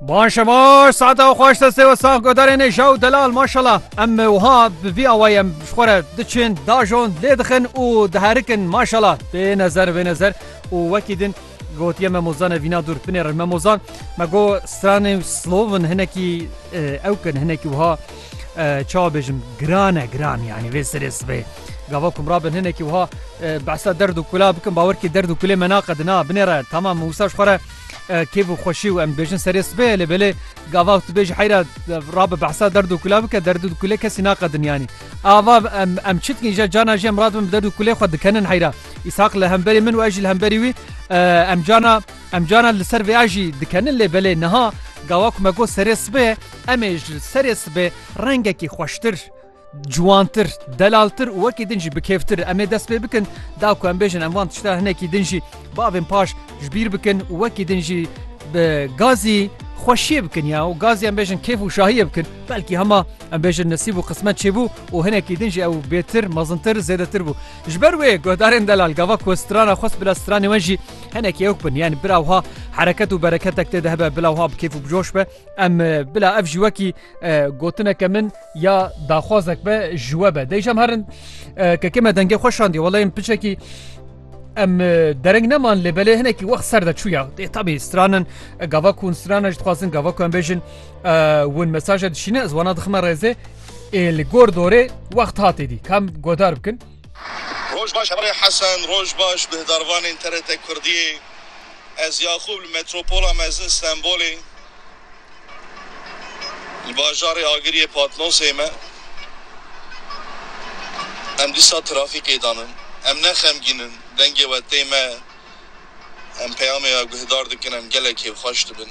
Ban şemaş saate xwe xweş destê we sax godarên ê jaw delal maşala em wiha bi vî awayê em ji xwe re diçin dajon lê dixin û diherikin maşala tê nezer vê nezer û wekî din gotiye me mozan e vîna dûr binê re me mozan me got stranê slovin hinekî ewkin hinekî wiha çawa bêjim giran e giran yanî vê serê sibê gava kum rabin hinekî wiha behsa derd û kula bikin bawer kê derd û kulê me naqedin a binê re tamam wisa ji xwe re kêf û xweşî û em dibêjin serê sibê lê belê gava tu bêjî heyra rabe behsa derd û kula bike derd û kulê kesî naqedin yanî ava em em çi dikin îja cana jî em radibin bi derd û kulê xwe dikenin heyra îshaq li hemberî min û ez jî li hemberî wî em cana Em caran li ser vêa jî dikenin lê belê niha gawa ku me got serê sibê em ê ji serê sibê rengekî xweştir, ciwantir, delaltir û wekî din jî bikêftir em ê dest pê bikin da ku em bêjin em van tişta hinekî din jî bavên paş ji bîr bikin û wekî din jî bi gazî xweşiyê bikin ya û gazî em bêjin kêf û şahiyê bikin belkî hema em bêjin nesîb û qismet çêbû û hinekî din jî ew bêtir, mezintir, zêdetir bû. Ji ber wê guhdarên delal gava ku strana xwest bila stranê we jî Hinek yok bin yani bila wha hereket û bereketek tê de hebe bila wha bi kêf û bi coş be em bila ev ji wekî gotineke min ya daxwazek be ji we be dêjam herin kekê me dengê xwe şandiye weleyên piçekî em dereng neman lê belê hinekî wext ser de çûya dê tabî stranin gava ku hûn stranin ji dixwazin gava ku em bêjin hûn mesaje dişîne ez wana dixime rêzê ê li gor dorê wext hatê dî kam godar bikin Roj baş Herê Hesen, roj baş guhdarvanên TRT Kurdiyê, ez Yaqûb li metropola mezin Stenbolê li bajarê Agiriyê Patmosê me, em dîsa trafîkê dan in, em ne xemgîn in, dengê we tê me, em peyamê we guhdar dikin, em gelekî xweş dibin.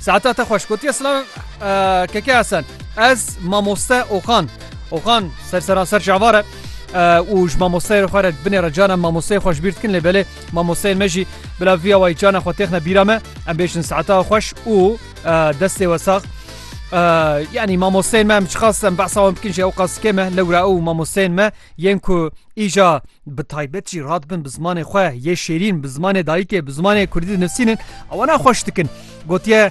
Saeta te xweş gotiye silav keke Hesen. Ez mamoste Oxan. Oxan ser seranser cavar e. û ji mamosteyê xwe re binê re canan mamosteyê xweş bîr dikin lê belê mamosteyên me jî bila viya wayî canan xwe têxne bîra me em bêjin saeta xweş û destê we sax yanî mamosteyên me em çiqas em behsa wan bikin jî ew qas kêm e lewra ew mamosteyên me yên ku îja bi taybet jî radibin bi zimanê xwe yê şêrîn bi zimanê dayikê bi zimanê kurdî dinivîsînin ew ne xweş dikin gotiye